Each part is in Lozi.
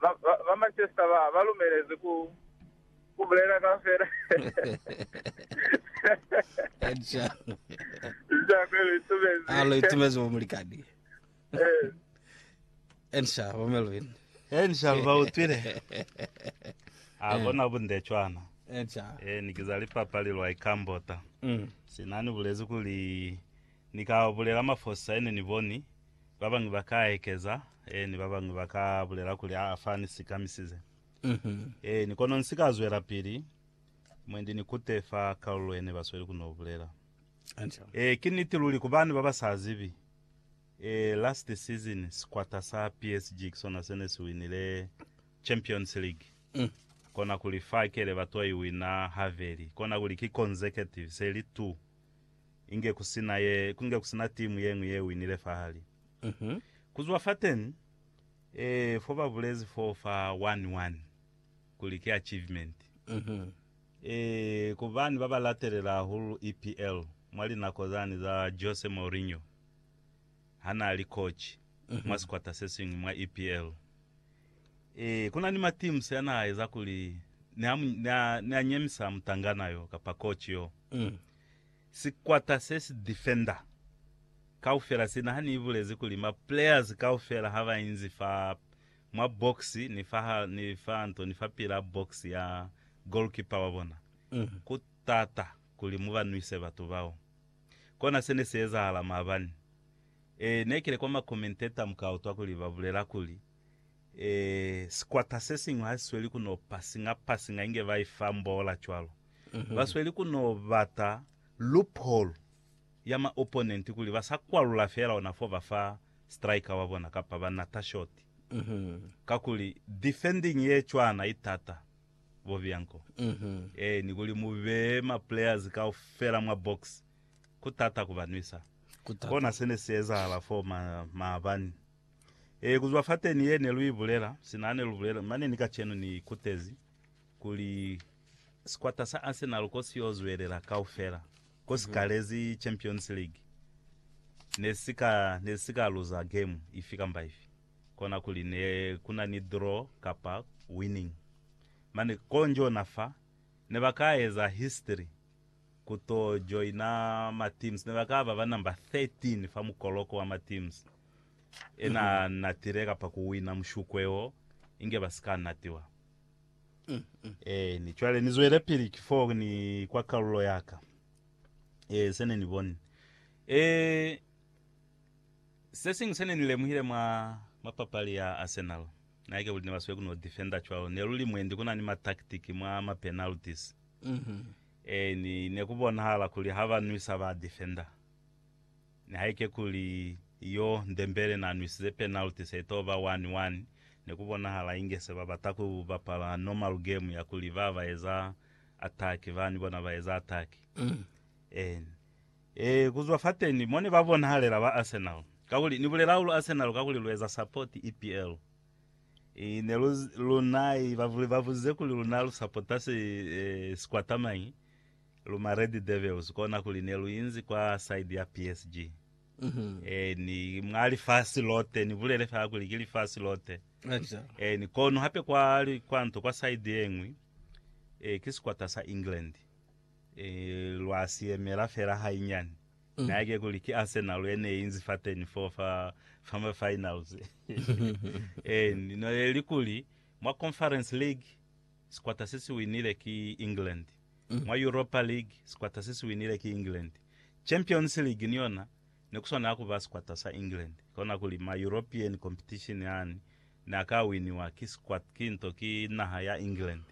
Ba Manchester ba ba lumelezi ku ku bulela kaufela. Nshaku lu itumezi. Alo itumezi bo mulikani. Eh. Ensha bo Melvin. Ensha ba utwile. A bona bunde chwana. Ensha. Eh ni kiza lipapali lwa ikambota. Mm. Sinani bulezi kuli ni ka bulela mafosi sa ene ni boni. Babañwi ba ka ekeza, eeni, babañwi ba ka bulela kuli, Aa, fa ni sikamisize. Eeni, kono nsi ka zwelapili mwendi ni kute fa kalulo yene ba sweli ku no bulela. Ee, ki niti luli. Ku bani baba sa zibi, ee, last season sikwata sa PSG ki sona se ne si winile Champions League. Kona kuli fa kele ba to i wina habeli, kona kuli ki consecutive, se li two. inge ku si na ye, ku nge ku si na timu ye ñwi ye winile fa hali. Ku zwa fateni, eh, fo ba bulezi fo fa one-one kuli ki achievement. Eh, ku bani ba ba latelela hahulu EPL mwa linako zani za Jose Mourinho ha n'a li koci mwa sikwata se siñwi mwa EPL? Eh, ku na ni ma teams ya n'a eza kuli ne a, ne a, ne a nyemisa mutangana yo kapa koci yo. Sikwata se si defender kaufela sina ha ni ibulezi kuli ma players kaufela ha ba inzi fa mwa box ni fa ni fa nto ni fa pila box ya goalkeeper wa bona. Ku t'ata kuli mu ba nwise batu bao. Kona se ne si ezahala maabani. E, ne kile kwa ma commentator mu ka utwa kuli ba bulela kuli, Ee, sikwata sesiñwi hasisweli ku no pasinga-pasinga inge ba ifa mboola cwalo. Basweli ku no bata loophole ya ma opponent kuli ba sa kwalula feela ona fo ba fa striker wa bona kapa ba nata short. Kakuli defending ye cwana i t'ata, bo Bianco. Ee, ni kuli mu beye ma players kaufela mwa box, ku t'ata ku ba nwisa. Kona se ne si ezahala fo ma, maabani. Ee, kuzwa fateni ye ne lu ibulela, sina ne lu bulela, mane ni kacenu ni ikutezi kuli sikwata sa Arsenal ko si yo zwelela kaufela, ko si kalezi Champions League, ne si ka, ne si ka luza game ifi kamba ifi, kona kuli ne ku na ni draw kapa winning. Mane, konjo na fa, ne ba ka eza history ku to joina ma teams. Ne ba ka ba ba number 13 fa mukoloko wa ma teams e na natile kapa ku wina mushukwe wo, inge ba si ka natiwa. Eeni, cwale ni zwelepili ki foo ni kwa kalulo ya ka. Ee, se ne ni boni. Ee, se siñwi se ne ni lemuhile mwa, mwa papali ya Arsenal, naike kuli ne ba sweli ku no defender cwalo. Ne lu li mwendi ku na ni ma tactic mwa ma penalties. Ee, ni ne ku bonahala kuli ha ba nwisa ba defender. Nihaike kuli yo Ndembele na nwisize penalty se to ba one-one, ne ku bonahala inge se ba bata ku bapala normal game ya kuli ba ba eza attack, ba ni bona ba eza attack. Ee, ee, ku zwa fateni mo ne ba bonahalela ba Arsenal, kakuli ni bulela hahulu Arsenal kakuli lu eza support EPL. I ne lu, luna i ba, ba buzize kuli luna lu sapota si, eh, sikwata mañi? Lu ma Red Devils, kona kuli ne lu inzi kwa side ya PSG. Eh, ni mwa lifasi lote, ni bulele fela kuli ki lifasi lote. Acha. Eh, ni kono hape kwa, li- kwa nto, kwa side ye ñwi, eh, ki sikwata sa England. Eh, lwa si yemela fela hainyani. Na yake kuli ki Arsenal ye ne inzi fateni foo fa fama finals. Eh, no yeli kuli mwa Conference League sikwata se si winile ki England. Mwa Europa League sikwata se si winile ki England. Champions League ni yona ne kuswanela kuba sikwata sa England. Kona kuli ma European competition yani ne a ka winiwa ki sikwata, ki nto, ki naha ya England.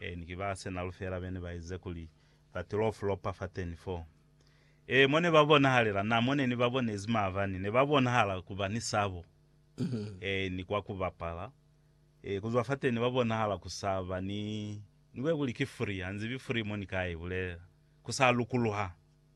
Eh, ni ki ba Arsenal feela bene ba ize kuli ba tilo flopa fateni foo. Ee, mo ne ba bonahalela, na mo ne ni ba bonezi maabani, ne ba bonahala ku ba ni sabo, ee, ni kwa ku bapala, ee, ku zwa fateni ne ba bonahala ku sa ba ni, ni kwe kuli ki free, ha nzibi free mo ni ka i bulela, ku sa lukuluha.